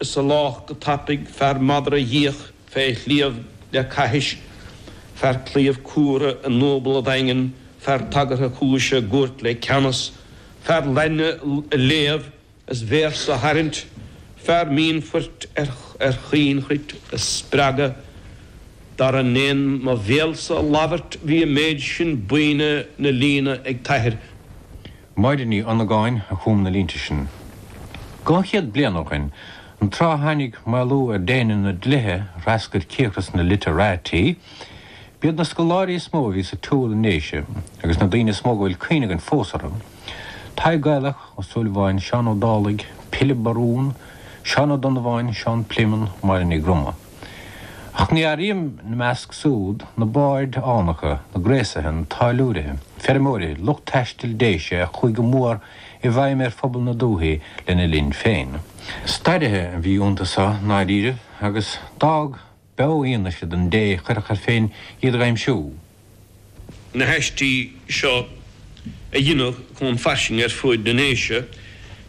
Is a lách go tapaidh fear madra dhíoch fé shliabh le caithis, fear claíomh cumhra i ndúbal a dhaingean, fear tagartha cúise i gcúirt le ceannas, fear Laidne a léamh is véarsa a tharraingt, fear mionphoirt ar chaoinchruit a spreagadh. Dar ndéin mo bhéalsa a labhairt bhí an méid sin buíne 'na líne ag t'athair. Máire Ní Dhonnagáin a chum na línte sin. Dhá chéad bliain ó shin, an tráth a tháinig maolú ar déine na dlíthe a threascair cíocras na 'literati', b'iad na scoláirí is mó a bhí sa tsiúl i nDéise, agus na daoine is mó go bhfuil cuimhne againn fós orthu, Tadhg Gaelach Ó Súilleabháin, Seán Ó Dálaigh, Pilib Barún, Seán Ó Donnabháin, Seán Pléimeann, Máire Ní Dhroma. Ach ní áirím ina measc súd na baird fhánacha, na gréasaithe, na táilliúirithe, feirmeoirithe, lucht taistil Déise a chuaigh go mór i bhfeidhm ar phobal na dúthaí lena linn féin. Stairithe a bhí iontu so, ndáiríribh, agus d'fhág beofhianaise don té a chuirfeadh air féin iad a aimsiú. na haistí seo a dhéanamh chun fairsinge ar fuaid na nDéise,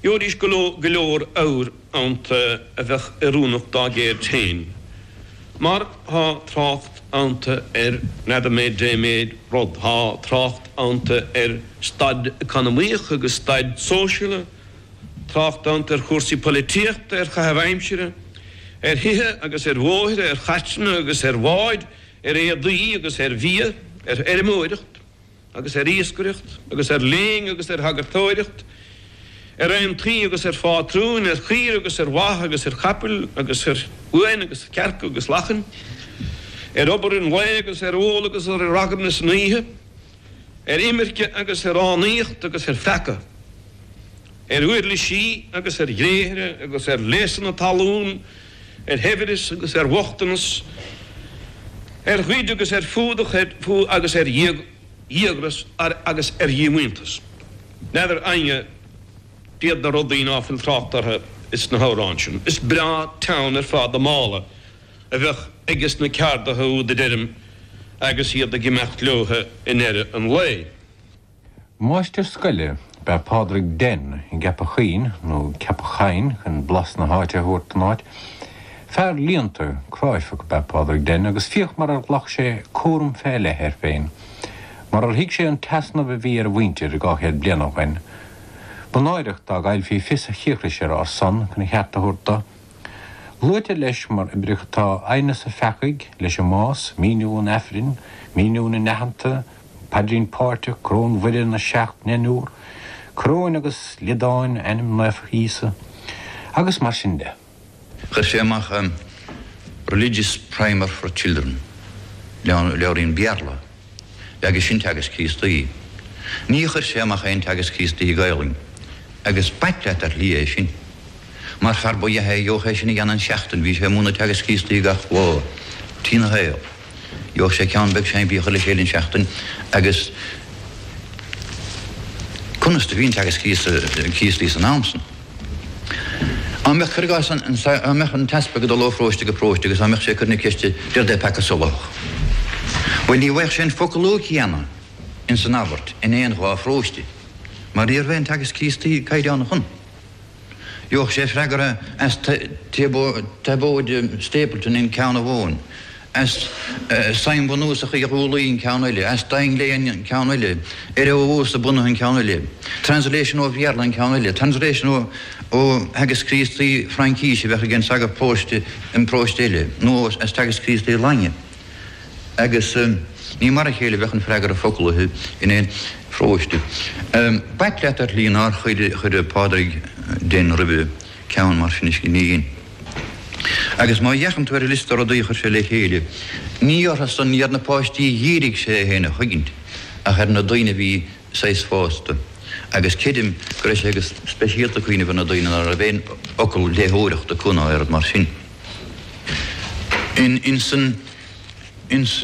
gheobhaidís go leor abhair iontu a bheadh oiriúnach dá gceird féin, mar thá trácht iontu ar readaméid, deiméid, rud, thá trácht iontu ar staid economaíoch agus staid sóisialta, trácht iontu ar chúrsaí poilitíochta, ar chaitheamh aimsire, ar thithe agus ar bhóithre, ar chairteanna agus ar bháid. ar éadaí agus ar bhia, ar fheirmeoireacht agus ar iascaireacht agus ar léinn agus ar shagartóireacht, ar aontaí agus ar phátrúin, ar chaoire agus ar bha agus ar chapaill agus ar uain agus ar chearca agus lachain, ar obair an lae agus ar ól agus ar ragairne san oíche, ar imirce agus ar fhánaíocht agus ar pheaca, ar uirlisí agus ar ghréithre agus ar léasanna talún, ar shaibhreas agus ar bhochtanas, ar ghoid agus ar fuadach, ar fuath agus ar dhíogras agus ar dhíomhaointeas. N'fheadar éinne cad iad na rudaí ná fuil trácht orthu ins na hamhráin sin. Is breá teann ar fad an mála a bheadh ages na ceardaithe úd a deirim agus iad ag imeacht leotha i ndeireadh an lae. Máistir scoile ab ea Pádraig Denn i gCeapach Choinn, nó Ceapach Chainn chun blas na háite a thabhairt don áit. Fear léannta, cráifeach ab ea Pádraig Denn agus féach mar ar ghlac sé cúram fé leith air féin, mar ar thuig sé an t-easnamh a bhí ar a mhuintir dhá chéad bliain ó shoin. Ba náireach dá gcaillfí fios a chíocrais ar ár son chun a cheart a thabhairt do. Luaitear leis mar oibreacha tá, Aighneas an Pheacaigh leis an mbás, míniú an Aifrinn, míniú na n-aitheanta, paidrín páirteach, coróin Mhuire, na seacht ndeichniúr, coróin agus liodáin, ainm naofa Íosa, agus mar sin de. Chuir sé amach an Religious Primer for Children, leabhairín Béarla, agus sin Teagasc Críostaí. Ní chuir sé amach aon Teagasc Críostaí Gaelainn, agus b'ait leat ar shlí é sin, mar fear ba dh'ea é a gheobhadh é sin a dhéanamh in seachtain, bhí sé ag múineadh Teagasc Críostaí gach lá dena shaol. Gheobhadh sé ceann beag simplí a chur le chéile in seachtain agus conas do bhí an Teagasc Críostaí san am san? Á mbeadh cur i gcás á mbeadh an tEaspag ag dul ó pharóiste go paróiste agus á mbeadh sé ag cur na ceiste dé rud é peaca solathach? Bhuel ní bhfaigheadh sé an focal céanna in san abairt in aon dhá pharóiste mar ní raibh aon Teagasc Críostaí caighdeánach ann Gheobhadh sé freagra as Tiobóid Stapleton in ceann amháin, as Suim Bhunúsach Uí Dhúlaí in Ceann eile, as Duinnshléibhe in Ceann eile, ar Ó hEodhasa bunaithe in Ceann eile, translation ó Bhéarla in Ceann eile, translation ó theagasc Críostaí Fraincíse a bheadh ag an sagart paróiste in Paróiste eile, nó as teagasc Críostaí Laidine. Agus ní mar a chéile a bheadh an freagra foclaithe in aon pharóiste. B'ait leat, ar shlí, nár chuir Pádraig Denn roimhe ceann mar sin a scríobh dúinn. Agus má dh'fhéachann tú ar an liosta rudaí a chuir sé le chéile, ní orthusan ar na páistí a dhírigh sé é féin a chuigint ach ar na daoine a bhí saghas fásta, agus creidim go raibh sé go speisialta ag cuimhneamh ar na daoine ná raibh aon fhocal léitheoireachta acu ná oiread mar sin. In